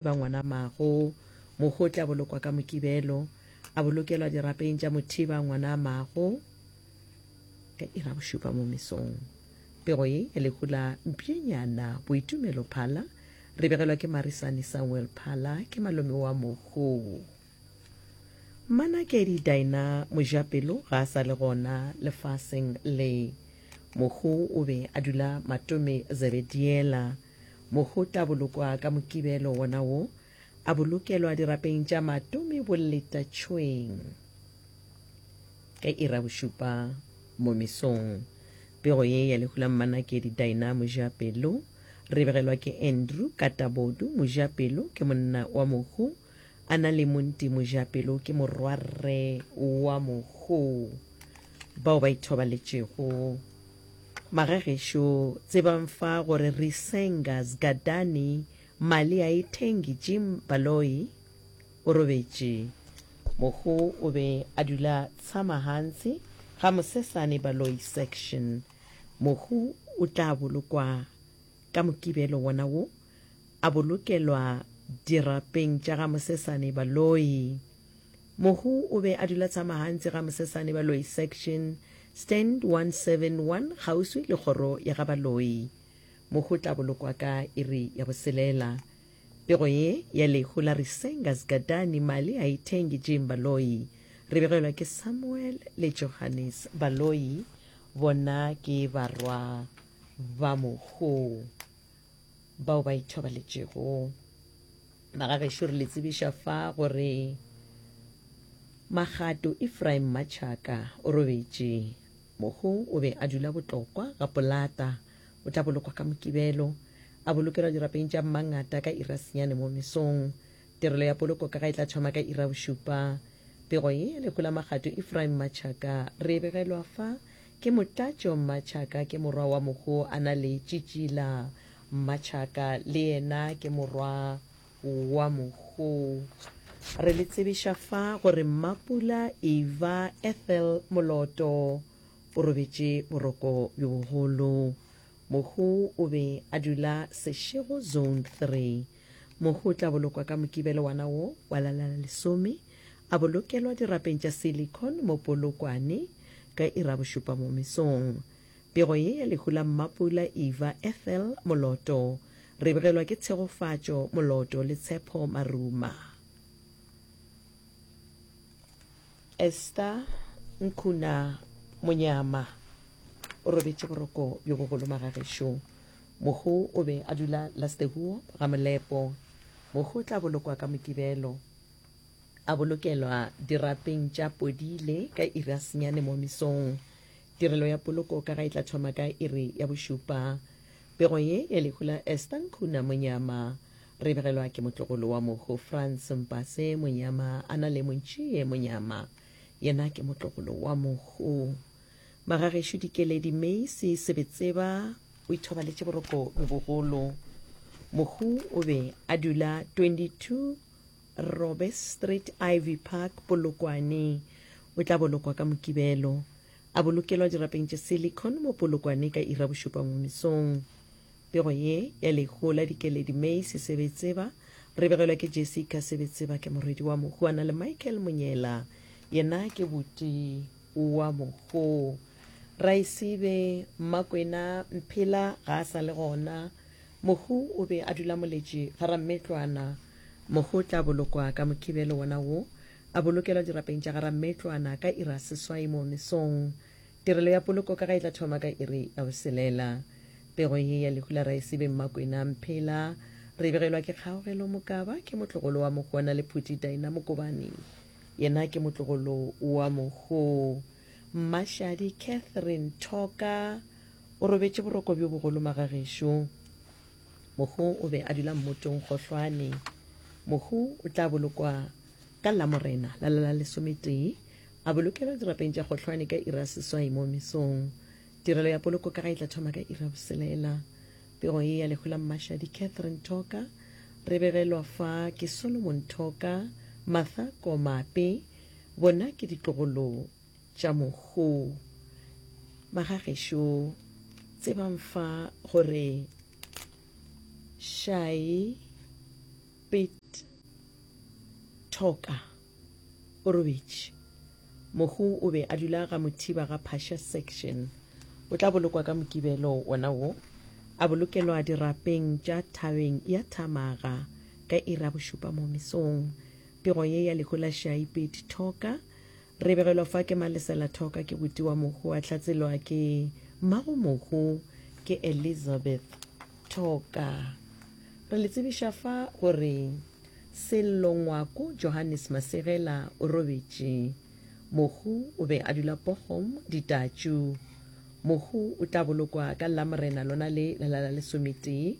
ba ngwanamago. Mohu o tla bolokwa ka Mokibelo, a bolokelwa dirapeng tša mothiba ngwanamago ka ira bošupa mo mesong. Pego ye ya lehu la Mpšenyana Boitumelo Phala re begelwa ke Marisane Samuel Phala, ke malome wa Mohu. Mma Nakedi Daina Mojapelo ga a sa le gona lefaseng le. Mokgo o be a dula Matome Zebediela. Mokgo tla bolokwa ka Mokibelo wona wo, a bolokelwa dirapeng tša Matome Boletatšhweng. Ka ira bošupa mo mesong, pego ye ya lehu la Mma Nakedi Daina Mojapelo re begelwa ke Andrew Katabodu Mojapelo ke monna wa Mokgo. A na le Monti Mojapelo ke morwarre wa mogo bao ba ithobaletšego. Magagešo tsebang fa gore Risenga Zgadani Mali a e thengi Jim Baloyi o robetše. Mogo o be a dula tshama gantsi ga Mosesane Baloyi section. Mogo o tla bolokwa ka mokibelo wona wo. a bolokelwa dirapeng tša ga Mosesane Baloyi. Mohu o be a dula Tshamahantsi ga Mosesane Baloyi Section, Stand 171, kgauswi le kgoro ya ga Baloyi. Mohu o tla bolokwa ka iri ya boselela. Pego ye ya lehu la Risenga Zgadani Mali a Ithengi Jim Baloyi. Re begelwa ke Samuel le Johannes Baloyi, bona ke barwa ba mohu. bao ba ithobaletšego. Bagagešo re le tsebiša fa gore Magato Ephraim Machaka o robetše. Mohu o be a dula botlokwa ga polata. O tla bolokwa ka Mokibelo, a bolokelwa dirapeng tša Mmangata ka iri ya senyane mo mesong. Tirelo ya poloko ka ga e tla thoma ka iri ya bošupa. Pego ye ya lehu la Magato Ephraim Machaka re e begelwa fa Ke Motlatšo Mmatšhaka ke morwa wa Mokgo a na le Tšitšila Mmatšhaka le yena ke morwa wa Mokgo. Re le tsebiša fa gore Mmapula Eva Ethel Moloto o robetše boroko bjo bogolo. Mokgo o be a dula Seshego Zone 3. Mokgo o tla bolokwa ka Mokibelo wana wo wa la la lesome. A bolokelwa dirapeng tša silicon mo Polokwane ka Irabošupa mo mesong. Pego ye ya lehu la Mmapula Eva Ethel Moloto. Re begelwa ke Tshegofatšo Moloto le Tshepho Maruma. Esther Nkuna Monyama o robetše boroko bjo bogolo magagešo. Mohu o be a dula Lastehuo ga Molepo. Mohu o tla bolokwa ka Mokibelo. a bolokelwa dirapeng tša Podile ka iri a senyane mo mesong. Tirelo ya poloko ka ga e tla thoma ka iri ya bošupa. Pego ye ya lehu la Esther Nkhuna Monyama re begelwa ke motlogolo wa mohu France Mpase Monyama a na le Montšiye Monyama yena ke motlogolo wa mohu. Magagešo Dikeledi Meisi Sebetseba o ithobaletše boroko bjo bogolo. Mohu o be a dula 22 Robe Street, Ivy Park, Polokwane. O tla bolokwa ka Mokibelo. A bolokelwa dirapeng tše silicon mo Polokwane ka ira bošupa ngomisong. Pego ye ya lehu la dikeledi May Sesebetseba re begelwa ke Jessica Sebetseba ke morwedi wa mohu a na le Michael Monyela yena ke buti wa mohu. Raesibe Mmakwena Mphela ga a sa le gona. Mohu o be a dula moletše ga Rammetlwana. Mohu o tla bolokwa ka Mokibelo wona wo, a bolokelwa dirapeng tša ga Rammetlwana ka iri ya seswai moo mesong. Tirelo ya poloko ka ga e tla thoma ka iri ya boselela. Pego ye ya lehu la Raesibe Mmakwena Mphela re e begelwa ke Kgaogelo Mokaba, ke motlogolo wa Mohu wa Nalephuti Daina Mokobane, yena ke motlogolo wa Mohu Mmashadi Catherine Thoka, O robetše boroko bjo bogolo magagešo. Mohu o be a dula mmotong gohlwane. Mohu o tla bolokwa ka Lamorena la la lesometee, a bolokelwa dirapeng tša gohlwane ka iri ya seswai mo mesong. Tirelo ya poloko ka ga e tla thoma ka iri ya boselela. Pego ye ya lehu la Mmashadi Catherine Thoka re begelwa fa ke Solomon Thoka, Martha Komape. Bona ke ditlogolo. tša mohu. Magagešo, tsebang fa gore Shai Pit Toka o robetše. Mohu o be a dula ga Mothiba ga Phasha Section. O tla bolokwa ka Mokibelo wona wo. A bolokelwa dirapeng tša thabeng ya Thamaga ka iri ya bošupa mo mesong. Pego ye ya lehu la Shai Pit Toka Re begelwa fa ke Malesela Thoka, ke buti wa Mohu, a hlatselwa ke mmago Mohu, ke Elizabeth Thoka. Re le tsebiša fa gore Sello Ngwako Johannes Masegela o robetše. Mohu o be a dula Bochum, Ditatšu. Mohu o tla bolokwa ka Lamorena lona le la la lesometee.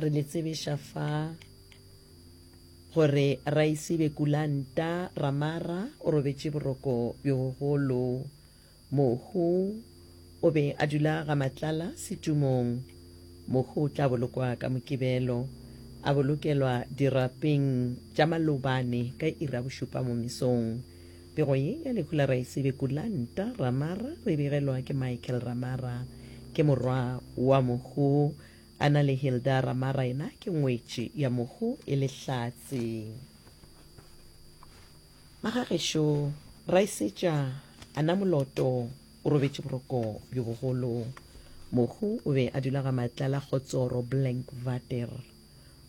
Re le tsebeša fa gore Raisibe Kulanta Ramara o robetše boroko bjo bogolo. Mohu o be a dula ga Matlala setumong. Mohu o tla bolokwa ka Mokibelo, a bolokelwa dirapeng tša Malobane ka iri ya bošupa mo mesong. Pego ye ya lehu la Raesibe Kulanta Ramara re begelwa ke Michael Ramara. Ke morwa wa mohu a na le Hilda Ramara yena ke ngwetši ya mohu e le Hlatse. Magagešo Raesetša a na moloto o robetše boroko bjo bogolo. Mohu o be a dula ga Matlala Kgotsoro Blank Vater.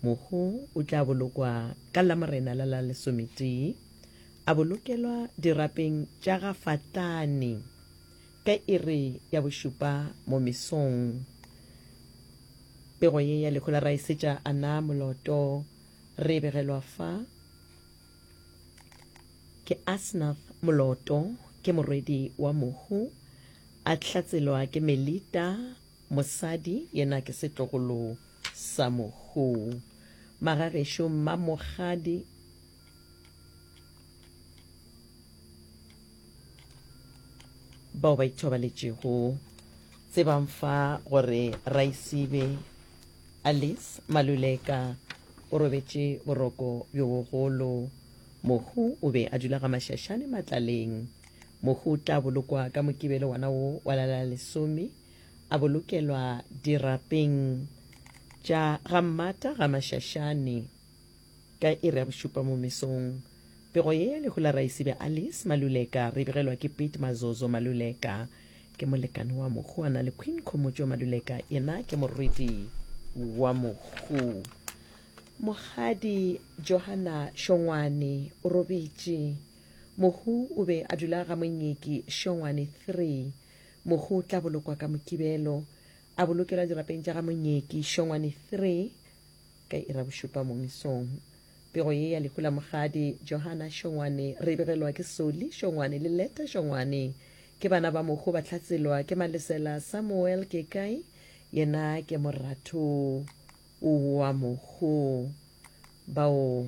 Mohu o tla bolokwa ka Lamorena la la lesometee, a bolokelwa dirapeng tša ga Fatlane ka iri ya bošupa mo mesong. Pego ye ya lehu la raesetša a na moloto re e begelwa fa ke Asnath Moloto ke morwedi wa Mohu, a hlatselwa ke Melita Mosadi yena ke setlogolo sa mohuu. Magagešo mmamogadi. Bao ba ithobaletšego tsebang fa gore Raisibe Alice Maluleka o robetše boroko bjo bogolo. Mohuu o be a dula ga Mašašane Matlaleng. Mohu o tla bolokwa ka Mokibelo wona wo wa la la lesome, a bolokelwa dirapeng tša ga Mmata ga Mašašane ka iri ya bošupa mo mesong. Pego ye ya lehu la Raesibe Alice Maluleka re begelwa ke Pete Mazozo Maluleka, ke molekane wa mohu. A na le Queen Khomotšo Maluleka, yena ke morwedi wa mohu. Mokgadi Johanna Šongwane o robetše. Mohu o be a dula ga Monyeki, Šongwane 3. Mohu o tla bolokwa ka Mokibelo. A bolokelwa dirapeng tša ga Monyeki, Šongwane 3, ka Irabošupa mo mesong. Pego ye ya lehu la Mogadi, Johana, Šongwane, re e begelwa ke Soli, Šongwane, le Leta, Šongwane. Ke bana ba Mohu ba hlaselwa ke Malesela, Samuel, Kekai, yena ke moratho wa Mohu. Bao.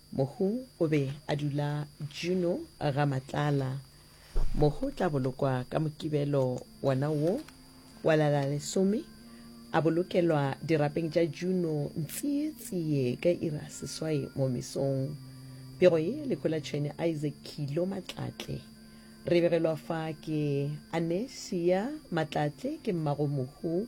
Mohu o be a dula Juno ga Matlala. Mohu o tla bolokwa ka Mokibelo wona wo wa la la lesome, a bolokelwa dirapeng tša Juno ntsietsie ka iri ya seswai mo mesong. Pego ye lehu la Tšhwene Isaac Khilo Matlatle. Re begelwa fa ke Anesia Matlatle ke mmago Mohu.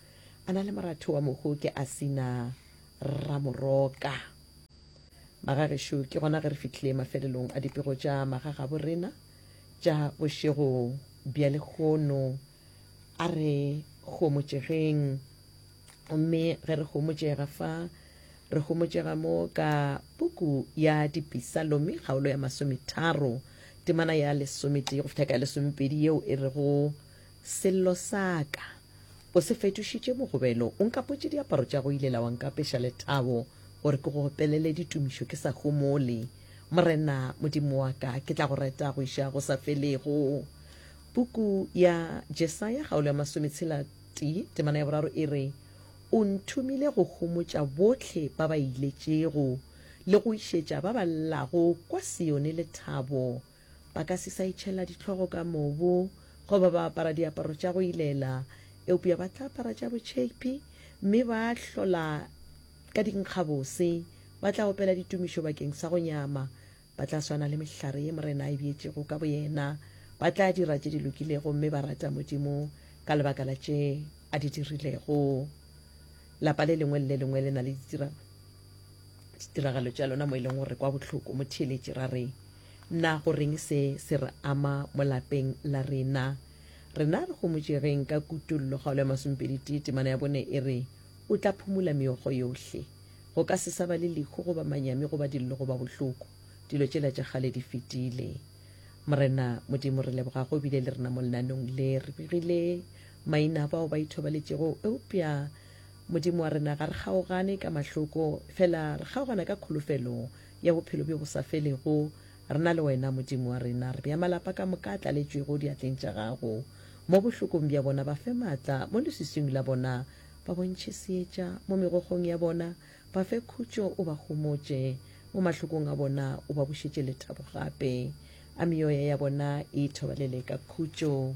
A na le moratho wa mohu ke a sina Ramoroka. Magagešo, ke gona ge re fihlile mafelelong a dipego tša magagabo rena tša bošego bja lehono. A re homotšegeng. Gomme ge re homotšega fa, re homotšega mo ka puku ya dipisalomi kgaolo ya masometharo, temana ya lesometee go fihla ka ya lesomepedi yeo e rego, Sello sa ka, o se fetošitše mogobelo, o nkapotše diaparo tša go ile la wa nkapeša lethabo gore ke go opelele ditumišo ke sa humole. Morena Modimo wa ka, ke tla go reta go iša go sa felego. Puku ya Jesaya, kgaolo ya masometshela-tee, temana ya boraro e re, O nthomile go homotša bohle ba ba iletšego le go išetša ba ba llago kwa Sione lethabo. Ba ka se sa itšhela dihlogo ka mobu goba ba apara diaparo tša go ilela, eupša ba tla apara tša botšheiphi mme ba hlola ka dinkgabose. Ba tla opela ditumišo bakeng sa go nyama. Ba tla swana le mehlare ye Morena a e beetšego ka boyena. Ba tla dira tše di lokilego mme ba rata Modimo ka lebaka la tše a di dirilego. Lapa le lengwe le le lengwe le na le ditiragalo. ditiragalo tša lona mo e leng gore kwa bohloko mo theeletše ra re na go reng se se re ama mo lapeng la rena rena re gomotšegeng ka kutollo kgaolo ya masompedi tee temana ya bone e re o tla phumula meokgo yohle go ka se sa ba le lehu goba manyami goba dillo goba bohloko dilo tšela tša kgale di fetile morena modimo re leboga go bile le rena mo lenanong le re begile maina bao ba ithobaletšego eupša Modimo wa rena, ga re kgaogane ka mahloko, fela re kgaogana ka kholofelo ya bophelo bjo bo sa felego re na le Wena, Modimo wa rena. Re bea malapa ka moka a tlaletšwego diatleng tša Gago. Mo bohlokong bja bona, ba fe matla, mo leswiswing la bona, ba bontšhe seetša, mo megokgong ya bona, ba fe khutšo, o ba homotše, mo mahlokong a bona, o ba bušetše lethabo gape. A meoya ya bona e ithobalele ka khutšo.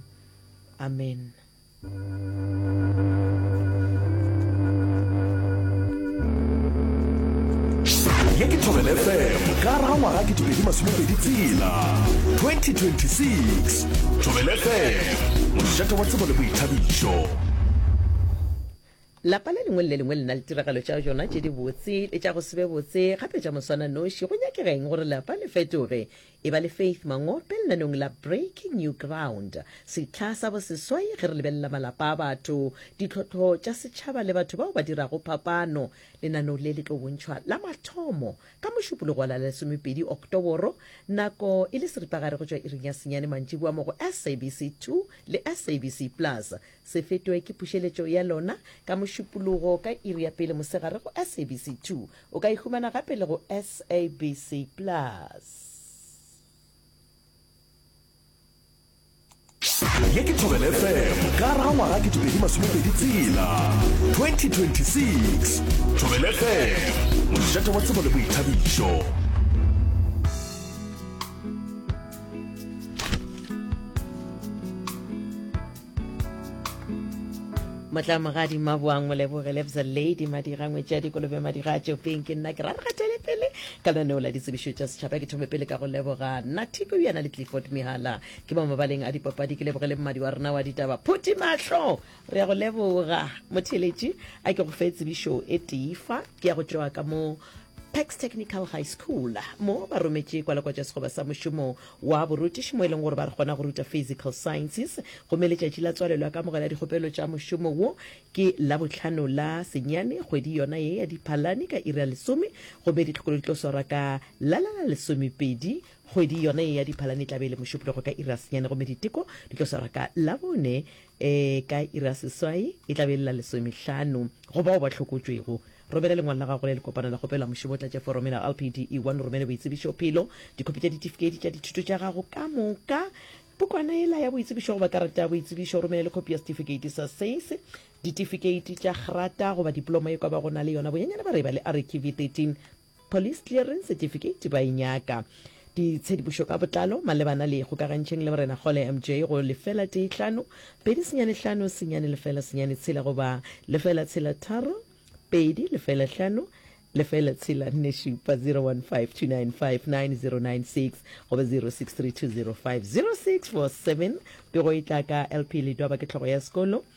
Amen. ye ke thobel fm ka raga ngwaga ke tibedi masomepedi tsela 2026 thobel fm mošate wa tsebo le boithabišo lapa le lengwe le le lengwe le na le tiragalo tša jona tše di botse le tša go sebe botse gape tša moswana noši go nyakegeng gore lapa le fetoge Eba le Faith Mangope lenanong la Breaking New Ground, sehla sa boseswai ge re lebelela malapa a batho, ditlhohlo tša setšhaba le batho bao ba dirago phapano. Lenano le le tlo bontšhwa la mathomo ka Mošupologo wa la lesomepedi Oktoboro, nako e le seripagare go tšwa iring ya senyane mantšiboa mo go SABC 2 le SABC Plus. Se fetwe ke pušeletšo ya lona ka Mošupologo ka iri ya pele mosegare go SABC 2. O ka e humana gape le go SABC Plus. ye ke thobele fm ka raga ngwaga ke dipedi masomepedi tsela 2026 thobele fm mošate wa tsebo le boithabišo motlamogadi maboang moleboge lebza lady madira ngwetšadi kolobe madira a tšopeng ke nna ke ra regatele pele ka lenaneo la ditsebišo tša setšhaba ke thome pele ka go leboga nathiko yena le clifford mehala ke ba mabaleng a dipapadi ke leboge le mmadi wa rena wa ditaba phuti mahlo re ya go leboga motheletši a ke go fe tsebišo e tifa ke ya go tšoa ka mo Pax Technical High School mo ba rometše kwalakwatša sekgoba sa mošomo wa borutiši mo e leng gore ba re kgona go ruta Physical Sciences gomme letšatši la tswalelo ya kamogelo ya dikgopelo tša mošomo wo ke Labohlano la senyane kgwedi yona ye ya Diphalane ka iri ya lesome gomme ditlhokolo di tlo swarwa ka la la la lesomepedi kgwedi yona ye ya Diphalane e tla be e le mošupulogo ka iri ya senyane gomme diteko di tlo swarwa ka Labone E, ka iri ya seswai e tla be e le la lesomehlano. Go bao ba hlokotšwego, romela lengwalo la gago la lekopano la kgopelo la mošomo, tlatše forome la LPD E1, o romele boitsebišophelo, dikhopi tša ditifikheiti tša dithuto tša gago ka moka, pukwana yela ya boitsebišo goba karata ya boitsebišo, o romele le khopi ya setifikeiti sa SACE, ditifikeiti tša kgrata goba dipoloma e kwa ba go na le yona bonyenyane ba re e ba le REKV 13. Police Clearance Certificate ba e nyaka. Ditshedipušo ka botlalo malebana le Ikgokagantšheng le Morena Kgole MJ go lefela tee hlano, pedi senyane hlano, senyane lefela senyane tshela goba lefela tshela tharo, pedi lefela hlano, lefela tshela nne šupa, 0152959096 goba 0632050647 Pego e tla ka LP Ledwaba ke hlogo ya sekolo.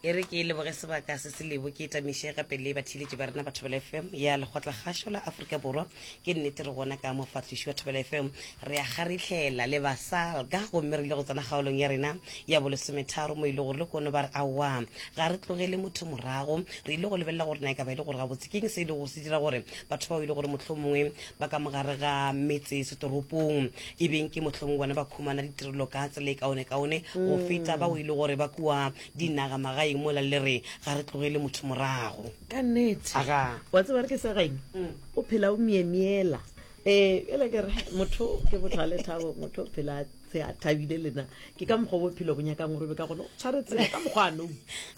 e re ke leboge sebaka se se lebo ke tamiše gape le batheeletši ba rena ba thobela fm ya lekgotlakgašo la aforika borwa ke nnete re gona ka mofahliši wa thobela fm re a kgarihlela le basalga gomme re ile go tsena kgaolong ya rena ya bolesometharo mo e le gore le kono ba re aowa ga re tlogele motho morago re ile go lebelela gore na e ka ba e le gore gabotse keng se e le gore se dira gore batho bao e le gore motlho mongwe ba ka mogare ga metse setoropong e beng ke motlho mongwe bona ba khumana ditirelo ka tsela e kaone kaone go mm. feta bao e le gore ba kua Dinaga magaeng mola le re ga re tlogele motho morago. Ka nnete. Aga. Wa tseba re ke sa gaeng? Mm. O phela o miemiela. Eh, ele ke re motho ke botho le thabo, motho o phela se a thabile lena. Ke ka mokgwa bophelo bo nyakang gore be ka gone o tshwaretse ka mokgwa a nou.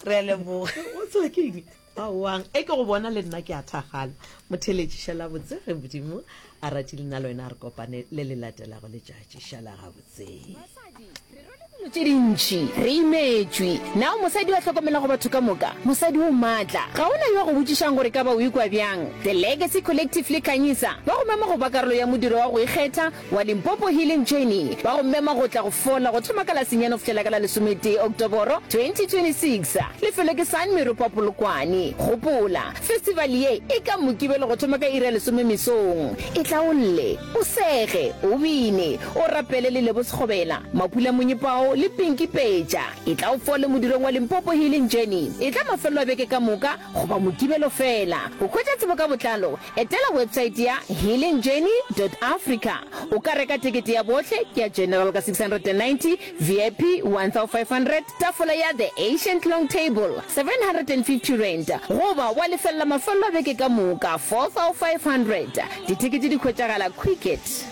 Re a leboga. O tswa ke eng? Aowa, e ke go bona le nna ke a thakgala. Motheletši, šala botse ge Modimo a ratile nna le wena a re kopane le le latelago letšatši. Šala gabotse. Basadi, re rwele dilo tše dintši, re imetšwe. Na o mosadi yo a hlokomelago batho ka moka? Mosadi o maatla. Ga go na yo a go botšišang gore e ka ba o ikwa bjang. The Legacy Collective le Khanyisa ba go mema go ba karolo ya modiro wa go ikgetha, wa Limpopo Healing Journey ba go mema go tla go fola go thoma ka la senyane go fihlela ka la lesometee Oktoboro 2026. Lefelo ke San Meropa Polokwane. Gopola, festival ye e ka Mokibelo go thoma ka iri ya lesome mesong. E tla o lle, o sege, o bine, o rapele le Lebo Sekgobela, Mapula Monyepao le Pinky Peja. E tla o fole modirong wa Limpopo Healing Journey. E tla mafelelo a beke ka moka goba Mokibelo fela. Go hwetša tsebo ka botlalo Etela websaete ya healingjourney.africa o ka reka tekete ya bohle ya General ka 690, VIP 1500, tafola ya The Ancient Long Table 750 rand, goba wa lefelela mafelelo a beke ka moka 4500. Ditekete di hwetšagala Quicket.